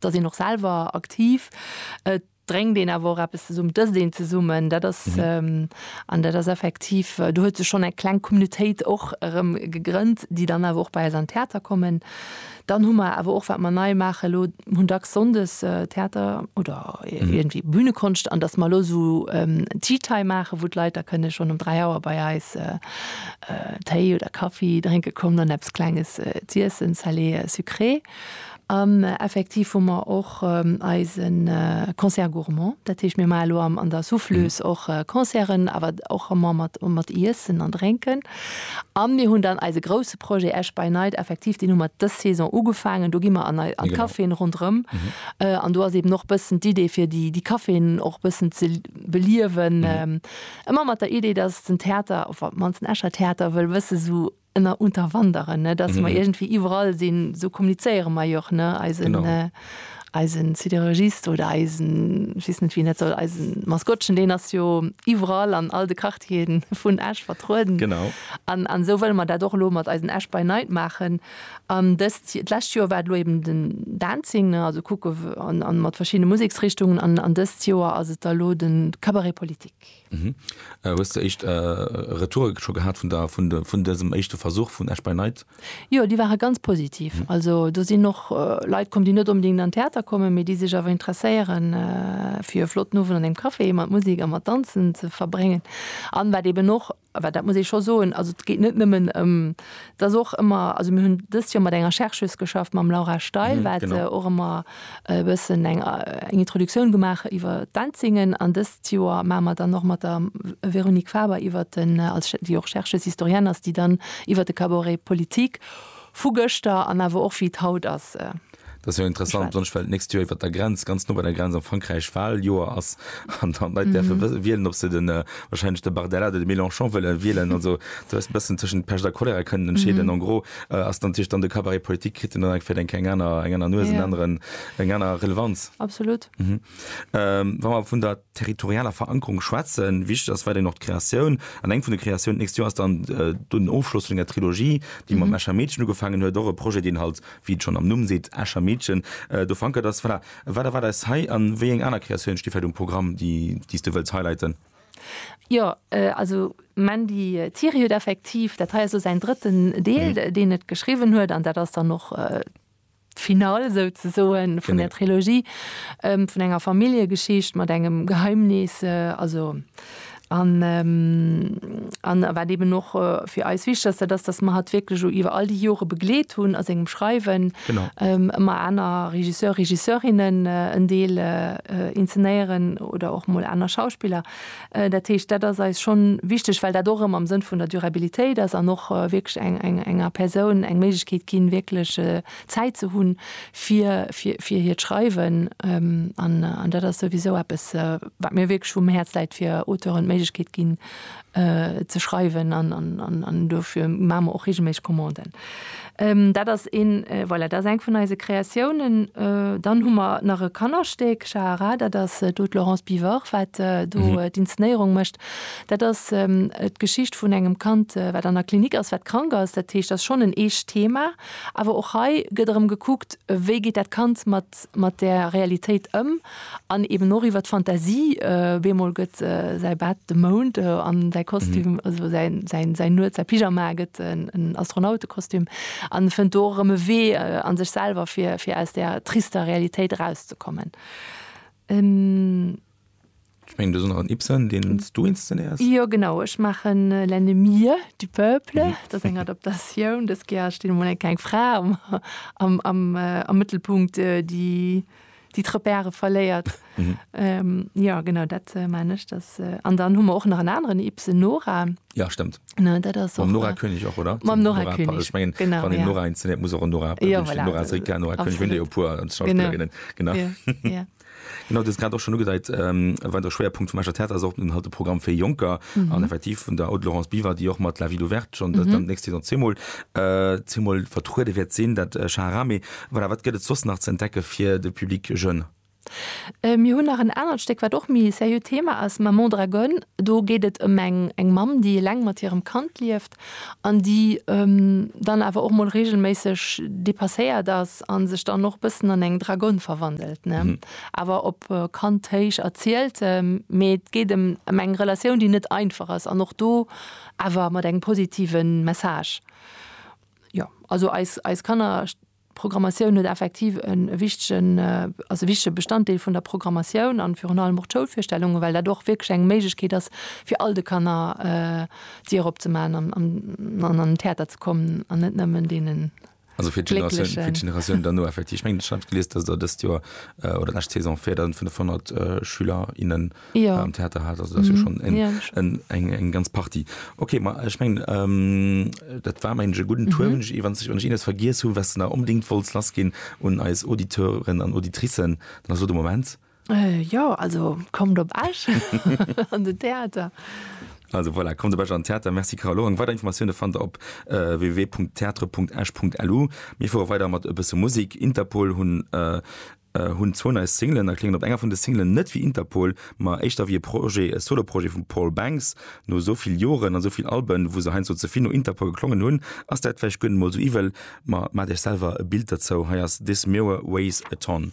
Et ass een och selwer aktiv, et drénkt een awer och eppes zesummen, et ësst een zesummen. Dat ass, an dat ass effektiv, do huet sech schonn eng kleng Communautéit och erëm gegrënnt, déi dann awer och bei eis an Theater kommen. Dann hu mer awer och, wat mer nei maachen elo, mer hunn dacks sonndes Theater oder iergendwéi Bühnekonscht. An datt mer elo esou Tea Time maachen, wou d'Leit da kënne schonn um dräi Auer bei eis Téi oder Kaffi drénke kommen an eppes Klenges z'iessen, salé, sucré. An effektiv hu mer och eise Concert gourmand. Dat heescht, mir maache lo an der Souffleuse och Concerten, awer och ëmmer mat Iessen an Drénken. A mir hunn dann eise grousse Projet Esch by Night, effektiv, deen hu mer dës Saison ugefaangen. Do gi mer an d'Caféen ronderëm. An do ass eeben och bëssen d'Idee, fir déi Caféen och bëssen ze beliewen. Ëmmer mat der Idee, dass den Theater, op d'mannst den Escher Theater, wëll bësse sou Ënner unterwanderen, ne, dass mer iergendwéi iwwerall sinn, esou kommunizéiere mer jo och, ne, eisen, eisen Siderurgist oder eisen, ech weess net, wien dat soll, eisen Maskottchen, deen ass jo iwwerall an all de Quartieren vun Esch vertrueden. Genau. An, an esou wëlle mer dat och elo mat eisen Esch by Night maachen. An dëst, d'lescht Joer war et elo eben den Dancing, ne, also kucke, an, an mat verschiddene Museksrichtungen, an, an dëst Joer ass et da elo de Cabaret politique. Hues de éischt Retoure scho gehat vun dësem éischte Versuch vun Esch by Night? Jo, déi ware ganz positiv. Also do sinn och Leit komm, déi net onbedéngt an Theater kommen, mee déi sech awer interesséieren, fir e flotten Owend an engem Café mat Musek a mat Danzen ze verbréngen. An wat eeben och, wat dat muss ee scho soen, also et geet net nëmmen ëm Et ass och ëmmer, also mir hunn dëst Joer mat enger Chercheuse geschafft, mam Laura Steil, wat och ëmmer e bëssen eng Introduktioun gemaach huet iwwer d'Enzingen. An dëst Joer maache mer dann och mat der Véronique Faber iwwer den, déi och Chercheuse historienne ass, déi dann iwwer de Cabaret politique vu gëschter an awer och wéi et haut ass, Dat ass jo interessant, besonnesch well d'nächst Joer iwwert der Grenz, ganz no bei der Grenz am Frankräich Wahljoer ass an dann d'Leit däerfe mhm. wë wielen, ob se den äh, wahrscheinlech de Bardella oder de Mélenchon wëlle wielen. Also du hast bëssen tëschent Pech a Cholera kënnen entscheeden. Mhm. En gros äh, ass dann Tisch dann de Kabarett Politik kritt en dann fir eng eng aner eng aner Nues, en ja. anderen eng aner Relevanz. Absolut. Mhm. Ähm, Wa mer vun der territorialer Verankerung schwätzen. Wichteg ass weiterhin och d'Kreatioun. An eng vun de Kreatioun d'nächst Joer ass dann den Ofschloss vun enger Trilogie, déi mam Escher Meedchen ugefaangen huet. Och e Projet, deen halt, wéi et schonn am Numm seet, Escher Meedchen, do verankert ass. Voilà, wat erwaart eis hei an wéi eng aner Kreatioune sti vläicht um Programm, déi s du wëlls highlighten? Jo, also Mandy Thiery huet effektiv, dat hei ass elo säin drëtten Deel, deen et geschriwwen huet an dat ass dann och, D'Finale souzesoen vun der Trilogie, vun enger Familljegeschicht mat engem Geheimnis, also an an wat eben och fir eis wichteg ass, dat ass, dass mer hatt wierklech o iwwer all déi Jore begleet hunn a sengem Schreiwen, ëmmer aner Regisseur, Regisseurinne en Deel inzenéieren oder och mol aner Schauspiller. Dat heescht, dat ass eis schonn wichteg, well dat och erëm am Sënn vun der Durabilitéit ass an och wierklech enger Persoun eng Méiglechkeet ginn, wierklech Zäit ze hunn fir hiert Schreiwen. An dat ass souwisou eppes, wat mir wierklech um Häerz läit, fir Auteuren d'Méiglechkeet ginn, ze schreiwen. An dofir maache mer och reegelméisseg Commanden. Dat ass een, voilà, dat ass eng vun eise Kreatiounen. Dann hu mer nach e Kannerstéck, Schaharah, dat ass do d'Laurence Bivort, wat do d'Inzenéierung mécht. Dat ass d'Geschicht vun engem Kand, wat an der Klinik ass, wat krank ass. Dat heescht, dat ass schonn en eescht Thema. Awer och hei gëtt erëm gekuckt, wéi geet dat Kand mat. geet mat der Realitéit ëm an eben och iwwer d'Fantasie, beemol gëtt säi Bett de Mound an säi Kostüm, also säin Nuet, säi Pyjama gëtt en Astronautekostüm an e fënnt do och erëm e Wee a sech selwer, fir aus där trister Realitéit erauszekommen. Ech mengen do ass och en Ibsen deen s du inszenéiers? Jo genau, ech maachen L'ennemi du peuple, dat ass eng Adaptatioun, dës Kéier steet emol eng kleng Fra am am am Mëttelpunkt déi déi d'Repèrë verléiert. Jo genau dat man ech dass an dann hu mer och nach en aneren Ibsen Nora. Jo stëmmt ne dat ass mam Nora König och oder? Mam Nora König ech mengen genau wann een Nora inszenéiert muss och en Nora jo voilà Nora Srika Nora König hunn der jo e puer Schauspillerinnen genau jo jo. Genau, du hues grad och schonn ugedeit, wann de Schwéierpunkt vum Escher Theater ass och den halt de Programm fir Jonker an effektiv vun der Aude Laurence Biver, déi och mat La Ville Ouverte schonn dann d'nächst Saison zweemol, zweemol vertruede wäert sinn, dat Schaharame. Voilà, wat gëtt et soss nach ze entdecke fir de Public jeune? Mir hunn nach en anert Stéck, wat och méi e seriö Thema ass, Maman Dragonne. Do geet et ëm eng Mamm, déi eleng mat hirem Kand lieft. an déi dann awer och mol regelméisseg depasséiert ass a sech dann och e bëssen an eng Dragonne verwandelt, ne? Awer op Kanthéisch erzielt, mee et geet ëm eng Relatioun, déi net einfach ass an och do awer mat engem positive Message. Jo, also eis Kanner. D'Programmatioun huet effektiv e wichtegen, ass e wichtege Bestanddeel vun der Programmatioun an virun allem och d'Schoulvirstellungen, well dat och wierklech eng Méiglechkeet ass fir all de Kanner d'Dier opzemaachen an an den Theater ze kommen an net nëmmen deenen Glécklechen. ja. am Theater hat also das mhm. schon eng ja, eng eng ganz Party okay ma ich mein ähm, dat war mein guten mhm. Tour ich, wann ich, wann ich vergis hu was na unbedingt wolls las gin und als Auditeuren an Auditricen na so de moment äh, ja also kommt op Asch an de Theater. Also voilà, kommt de an Theater Merci Carlo an weider Informationune fan der op äh, www.theatre.esch.lu mir vor weider mat e bësse Musik Interpol hunn äh, Hunn zwou nei Singlen a kléngen op enger vun de Singlen net wéi Interpol, ma éischter wéi e Projet, e Solo-Projet vum Paul Banks. No esou vill Joren an esou vill Alben, wou se heiansdo ze vill no Interpol geklongen hunn, ass dat vläicht guer net mol esou iwwel. Ma maacht Iech selwer e Bild derzou, hei ass This Mirror Weighs a Ton.